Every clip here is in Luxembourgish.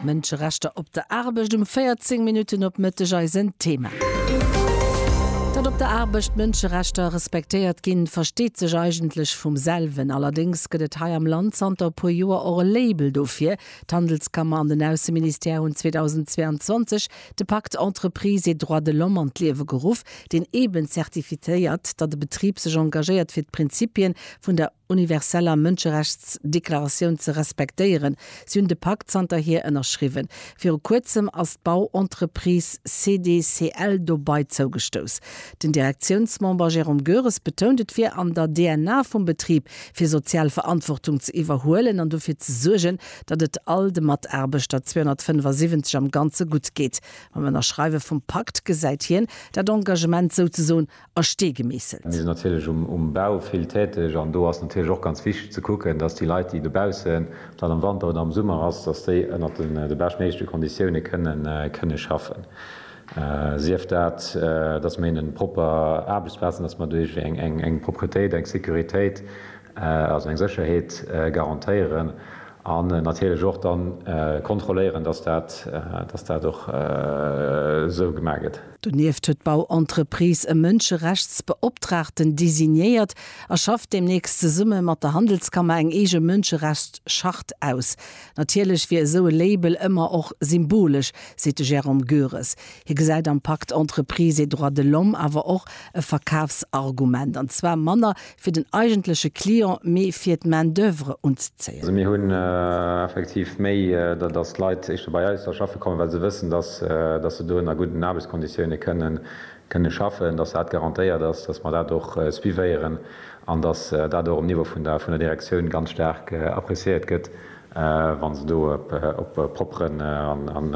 Mënscherechter op der Aarbecht, um 14 Minutten op Mëtteg eisen Thema. Datt op der Aarbecht d'Mënscherechter respektéiert ginn, versteet sech eigentlech vum selwen. Allerdéngs gëtt et hei am Land zanter e puer Joer och e Label dofir. D'Handelskammer an den Ausseministère hunn 2022 de Pacte Entreprises et droits de l'homme an d'Liewe geruff, deen eeben zertifiéiert, datt e Betrib sech engagéiert fir d'Prinzipie vun der. universeller Mënscherechtsdeklaratioun ze respektéieren. Si hunn de Pakt zanterhier ënnerschriwwen. Viru kuerzem ass d'Bauentreprise CDCL dobei zougestouss. Den Direktiounsmember Jérôme Goeres betount, et wier an der DNA vum Betrib, fir sozial Verantwortung ze iwwerhuelen an dofir ze suergen, datt et all de Mataarbechter, 275 am Ganze, gutt geet. Mam Ënnerschreiwe vum Pakt gesäit hien dat Engagement souzesoen a Stee gemeesselt. Mir sinn natierlech um Bau vill täteg an do ass natierlech och ganz wichteg ze kucken, dass déi Leit, déi dobaussen, ob dat am Wanter oder am Summer ass, dass déi ënnert de beschtméiglechte Konditioune kënne schaffen. Sief dat, dass mir hinnen propper Aarbechtsplazen, dass mer duerch eng Propretéit eng Sécuritéit, also eng Sécherheet garantéieren an natierlech och da kontrolléieren, dass dat och esou gemaach gëtt. Donieft huet d'Bauentreprise e Mënscherechtsbeoptraagten designéiert a schafft deemnächst zesumme mat der Handelskammer eng eege Mënscherechtschart aus. Natierlech wier esou e Label ëmmer och symbolesch, seet de Jérôme Goeres. Hie gesäit am Pacte Entreprises et droits de l'homme awer och e Verkafsargument, an zwar manner fir den eigentleche Client, mee fir d'Main d'oeuvre unzezéien. Mir hunn effektiv méi, datt Leit éischter bei eis da schaffe kommen, well se wëssen, datt se do ënner gudden Aarbechtsconditioune kënne schaffen, datt dat garantéiert ass, datt mer dat och suivéieren an datt dat och um Niveau vun der Direktioun ganz staark appreciéiert gëtt, wa se do op e propperen an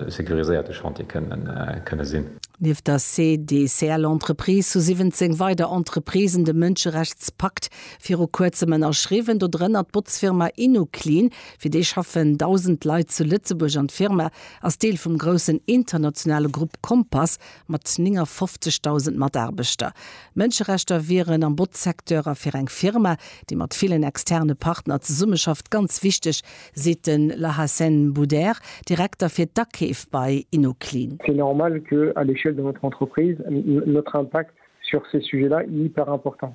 securiséierte Chantier kënne sinn. Nieft der CDCL-Entreprise hu 17 weider Entreprisen de Mënscherechtspakt viru Kuerzem ënnerschriwwen, dodrënner d'Botzfirma Inu-Clean. Fir déi schaffen 1.000 Leit zu Lëtzebuerg an d'Firma ass Deel vum groussen internationale Grupp Compass Mat 59.000 Mataarbechter. Mënscherechter wieren am Botzsecteur a fir eng Firma, déi mat villen externe Partner zesummeschafft, ganz wichteg, seet de Lahassène Boudère, Direkter fir d'Akeef bei Inoclean. C'est normal que, à l'échelle de notre entreprise, notre impact sur ces sujets-là, il est hyper important.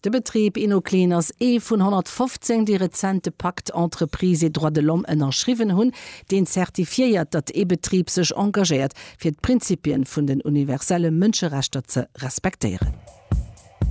De Betrib Innoclean ass ee vun 115, déi rezent de Pacte Entreprises et droits de l'homme ënnerschriwwen hunn, deen zertifiéiert, datt ee Betrib sech engagéiert, fir d'Prinzipien vun den universelle Mënscherechter ze respektéieren.